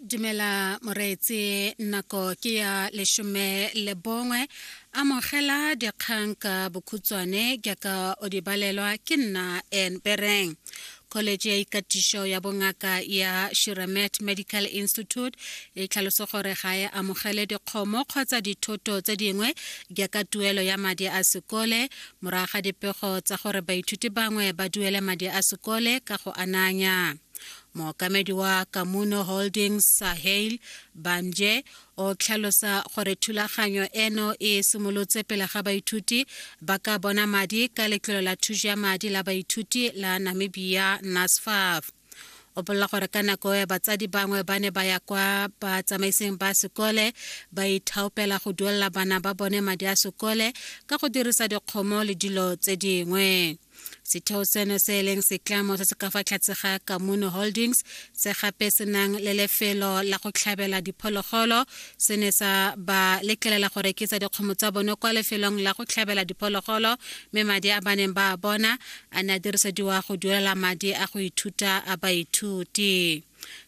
dumela moreetse nako ke ya leshome le bongwe amogela dikgang ka bokhutswane jaaka o di balelwa ke nna en bereng college ya ikatišo ya bongaka ya shiramet medical institute e tlhaloso gore ga e amogele dikgomo kgotsa dithoto tse dingwe jaaka tuelo ya madi a sekole Morago ga dipego tsa gore baithuti bangwe ba duele madi a sekole ka go ananya, mookamedi wa Kamuno Holdings Sahale Bamje o tlhalosa gore thulaganyo eno e simolotse pele ga baithuti ba ka bona madi ka letlole la thuso ya madi la baithuti la Namibia NSFAF. o bolela gore ka nako ya batsadi bangwe ba ne ba ya kwa batsamaiseng ba sekole ba ithaopela go duelela bana ba bone madi a sekole ka go dirisa dikgomo le dilo tse dingwe setheo seno se e leng setlamo se se ka fa tlhatse ga kamuno holdings se gape se nang le lefelo la go tlhabela diphologolo se ne sa ba letlelela go rekisa dikgomo tsa bone kwa lefelong la go tlhabela diphologolo mme madi a ba neng ba a bona a ne a dirisediwa go duelela madi a go ithuta a baithuti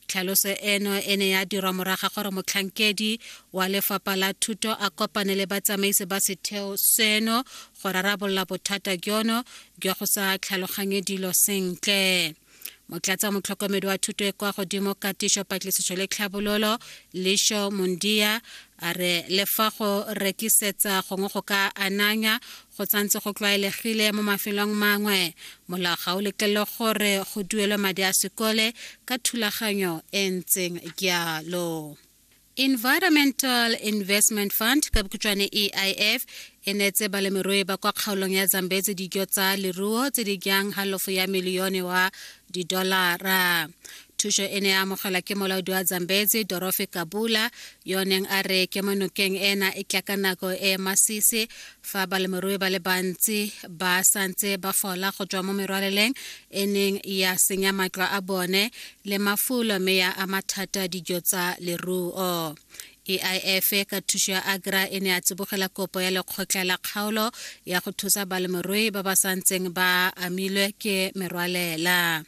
tlhaloso eno e ne ya dirwa moraga gore motlhankedi wa lefapha la thuto a kopane le batsamaisi ba setheo seno go rarabolola bothata jono jwa go sa tlhaloganye dilo sentle motlatsa motlhokomedi wa thuto e kwa godimo katišo patlisiso le tlhabololo lisho mondia a re le fa go rekisetsa gongwe go ka ananya go tsantse go tlwaelegile mo mafelong mangwe molao ga o letlele gore go duelwe madi a sekole ka thulaganyo e ntseng jalo Environmental Investment Fund ka bokhutswane EIF e neetse balemirui ba kwa kgaolong ya Zambezi dijo tsa leruo tse di jang halofo ya milione wa didolara. Thuso e ne ya amogelwa ke molaodi wa Zambezi Dorofi Kabula yo neng a re kemonokeng ena e tla ka nako e masisi fa balemirui ba le bantsi ba santse ba fola go tswa mo merwaleleng e neng ya senya matlo a bone le mafulo mme ya ama thata dijo tsa leruo AIF e ka thuso ya Agra e ne a tsibogela kopo ya lekgotla la kgaolo ya go thusa balemirui ba ba santseng ba amilwe ke merwalela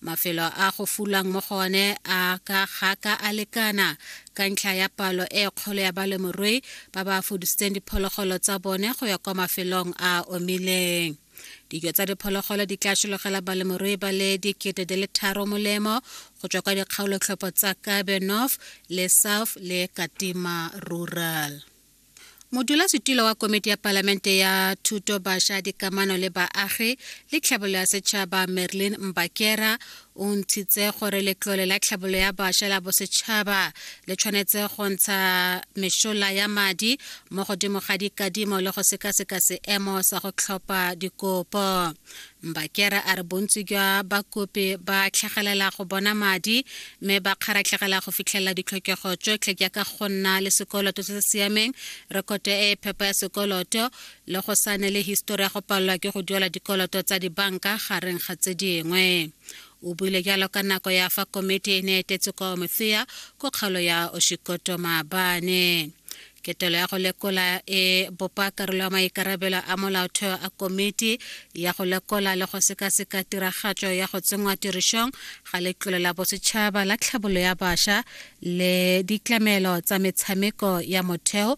mafelo a go fulang mo go one a ka ga ka a lekana ka ntlha ya palo e kgolo ya balemirui ba ba fudisitseng diphologolo tsa bone go ya kwa mafelong a omileng dijo tsa diphologolo di tla šologela balemirui ba le dikete di le tharo molemo go tswa kwa dikgaolotlhopho tsa kabe north le south le katima rural modulasetulo wa komiti ya palamente ya thuto baša dikamano le baagi le tlhabololo ya setšhaba merlin mbakera o ntshitse gore letlole la tlhabolo ya bašwa la bosetšhaba le tshwanetse go ntsha mešola ya madi mo godimo ga dikadimo le go sekaseka seemo sa go tlhopha dikopo mbakera a re bontsi jwa bakopi ba tlhagelela go bona madi mme ba kgaratlhegela go fitlhelela ditlhokego tsotlhe jaaka go nna le sekoloto se se siameng rekoto e e phepa ya sekoloto le go sa ne le histori ya go palelwa ke go duela dikoloto tsa dibanka gareng ga tse dingwe o buile jalo ka nako ya fa komiti e ne e etetse kwa omothea ko kgaolo ya oshikoto maabane ketelo ya go lekola e bopa karolo ya maikarabelo a molaotheo a komiti ya go lekola le go sekaseka tiragatso ya go tsenngwa tirišong ga letlole la bosetšhaba la tlhabolo ya bašwa le ditlamelo tsa metshameko ya motheo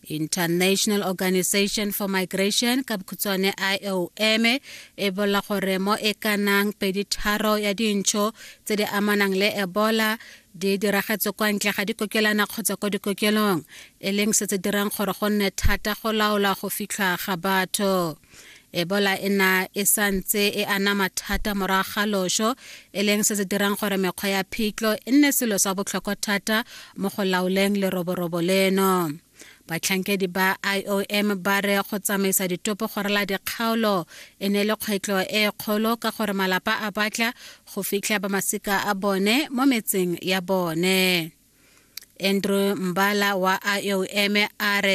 international organization for migration ka bokhutswane iom e bolela gore mo e ka nang pedi tharo ya dintšho tse di amanang le ebola di diragetse kwa ntle ga dikokelana kgotsa kwa dikokelong e leng se tse dirang gore go nne thata go laola go fitlha ga batho ebola e na e santse e anama thata morago ga loso e leng se se dirang gore mekgwa ya phitlho e nne selo sa botlhokwa thata mo go laoleng leroborobo leno batlhankedi ba iom ba re go tsamaisa ditopo go rela dikgaolo e ne le kgwetlho e kgolo ka gore malapa a batla go fitlha ba masika a bone mo metseng ya bone andrew mbala wa iom a re